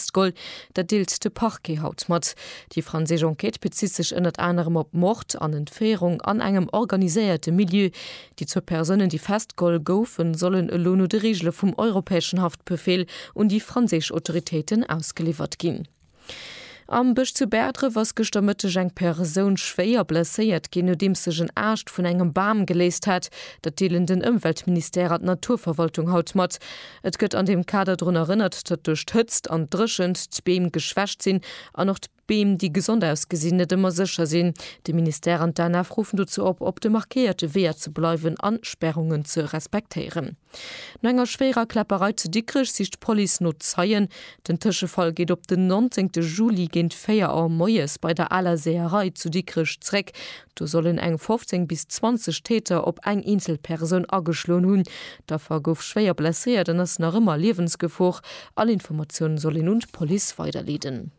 D'Gol, dat deelt de Parquet haut mat. Déi franséisch Enquête bezitt sech ënnert anerem op Mord an Entféierung an engem organiséierte Milieu. Déi zwou Persounen, déi festgeholl goufen, sollen elo no de Reegele vum europäeschen Haftbefeel un déi franséisch Autoritéiten ausgeliwwert ginn. Am Bësch zu Bäerdref ass gëschter Mëtteg eng Persoun schwéier blesséiert ginn, nodeems sech en Aascht vun engem Bam geléist hat. Dat deelen den Ëmweltministère an d'Naturverwaltung haut mat. Et gëtt an deem Kader drun erënnert, datt duerch d'Hëtzt an d'Dréchent d'Beem geschwächt sinn an och d'Beem, déi gesond ausgesinn, net ëmmer sécher sinn. De Ministère an d'ANAF ruffen dozou op, op de markéierte Weeër ze bleiwen a Spärungen ze respektéieren. No enger schwéierer Kläpperei zu Dikrech sicht d'Police no Zeien. Den Tëschefall geet op den 19 Juli géint 4 Auer moies bei der aler Seeërei zu Dikrech zeréck. Do sollen eng 15 bis 20 Täter op eng eenzel Persoun ageschloen hunn. D'Affer gouf schwéier blesséiert an ass nach ëmmer a Liewensgefor. All Informatiounen soll een un d'Police weiderleeden.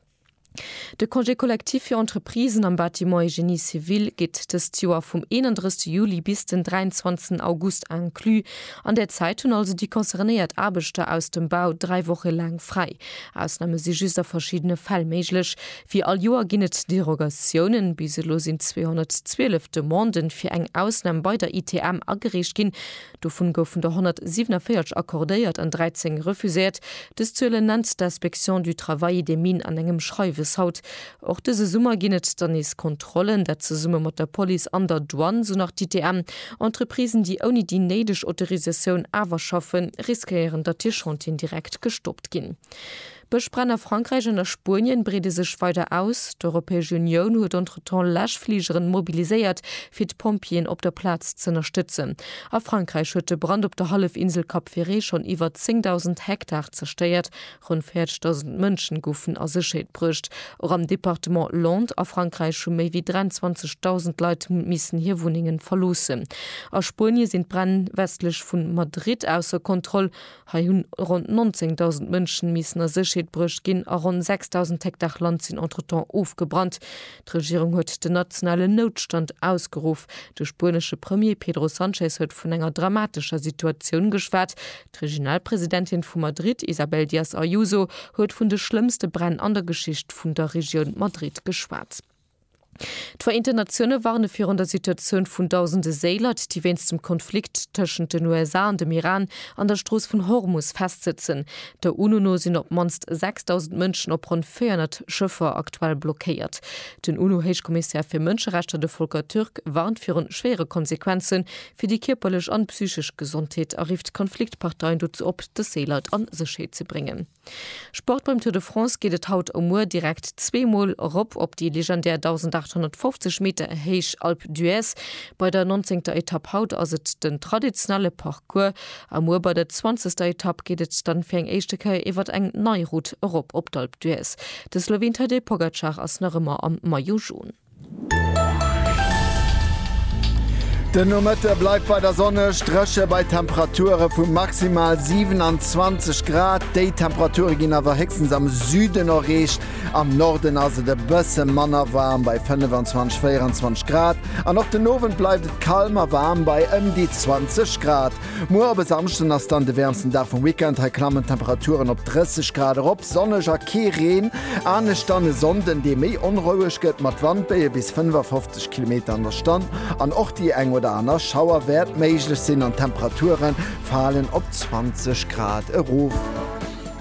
De Congé collectif fir Entreprisen am Bâtiment et Génie civil geet dëst Joer vum 31 Juli bis den 23 August inclus. An där Zäit hunn also déi concernéiert Aarbechter aus dem Bau dräi Woche laang fräi. Ausname si just a verschiddene Fäll méiglech. Wéi all Joer ginn et Derogatiounen. Bis elo sinn 212 Demande fir eng Ausnam bei der ITM agereecht ginn. Dovun goufen der 147 accordéiert an 13 refuséiert. Dës Zuelen nennt d'Inspection du travail des mines an engem Schreiwes haut. Och dëse Summer ginn et dann nees Kontrollen, dat zesumme mat der Police an der Douane, sou nach d'ITM. Entreprisen, déi ouni déi néideg Autorisatioun awer schaffen, riskéieren, datt hir Chantieren direkt gestoppt ginn. D'Bëschbränn a Frankräich an a Spuenien breede sech weider aus. D'Europäesch Unioun huet entretemps Läschfligeren mobiliséiert, fir d'Pompjeeën op der Plaz z'ënnerstëtzen. A Frankräich huet de Brand op der Hallefinsel Cap Ferret schonn iwwer 10.000 Hektar zerstéiert, ronn 40.000 Mënschen goufen a Sécherheet bruecht. Och am Departement Landes a Frankräich hu méi wéi 23.000 Leit missen hir Wunnengen verloossen. A Spuenie sinn d'Bränn westlech vu Madrid ausser Kontroll. Hei hunn ronn 19.000 Mënschen missen a Séchheet bruecht ginn a ronn 6.000 Hektar Land sinn entretemps ofgebrannt. D'Regierung huet den nationalen Noutstand ausgeruff. De spuenesche Premier Pedro Sanchez huet vun enger dramatescher Situatioun geschwat. D'Regionalpresidentin vu Madrid Isabel Díaz Ayuso huet vun de schlëmmste Bränn an der Geschicht vun der Regioun Madrid geschwat. D'Vereenten Natioune warne virun der Situatioun vun dausende Séilert, déi wéinst dem Konflikt tëschent den USA an dem Iran an der Strooss vun Hormus festsëtzen. Der UNO no sinn op d'mannst 6.000 Mënschen op ronn 400 Schëffer aktuell blockéiert. Den UNO-Héichkommissär fir Mënscherechter, de Volker Türk, warnt viru schwéiere Konsequenze fir déi kierperlech an psychesch Gesondheet a rifft d'Konfliktparteien dozou op, dës Séilert a Sécherheet ze bréngen. Sport Beim Tour de France geet et haut a muer direkt zwee Mol erop op déi legendär 1.850 Meter héich Alpe d'Huez. Bei der nonzéngter Etapp haut ass et den traditionelle Parcours a muer bei der zwanzegster Etapp geet et dann fir eng éischte Kéier iwwert eng nei Route erop op d'Alpe d'Huez. De Sloween Tadej Pogacar ass nach ëmmer am Maillot Jaune. Den Nomëtte bleift weider sonneg, dréche bei Temperature vu maximal 27 Grad. Déi Temperature ginn awer héchstens am Süden erreecht. Am Norden ass et e bësse manner waarm bei 25, 24 Grad an och den Owend bleift et kal ma waarm bei ëm déi 20 Grad. Muer op e Samschden ass dann de wäermsten Dag vum Weekend. Hei klammen d'Temperaturen op 30 Grad erop, sonneg a kee Reen. Anescht dann e Sonnden, dee méi onroueg gëtt, mat Wandbéie bis 55 Kilometer an der Stonn an och déi eng oder aner Schauer wäert méiglech sinn an d'Temperature falen op 20 Grad erof.